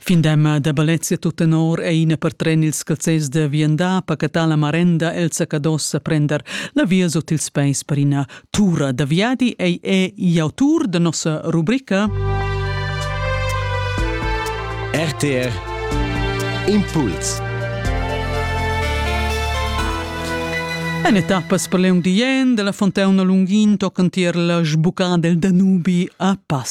Fin d'emma da Balezia tuttenor è ina per tren ils calzers da viandar pacatà la marenda el Sacadossa prender la via sut ils peis per ina tura da viadi ei è l'autur da nossa rubrica RTR Impuls En etappas per leung dien de la fontauna Lungin tocan tier la sbucada del Danubi a Pass.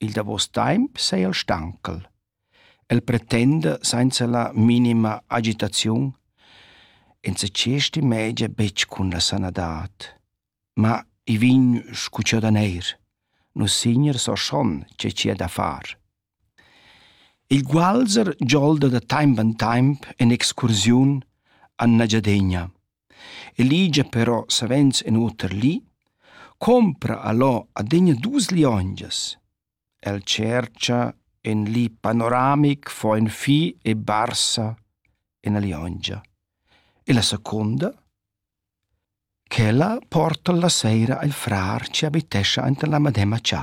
Il davos temps seigi el stancal. El pretenda senza la minima agitaziun enzatgei stimegia betg cun la sanadad. Ma i vegn sco cheu daner. Nus signer so schon che ci è da far. Il gualzer giolda da temps en temps en excursiun a Nagiadegna. E ligia però savens in oter li: compra allò adüna duos liongias. El tschercha ün li panoramic, fo ün fi e barsa üna liongia. E la secunda? Ch'ella porta la seira il frar chi abitescha aint la medemma cha.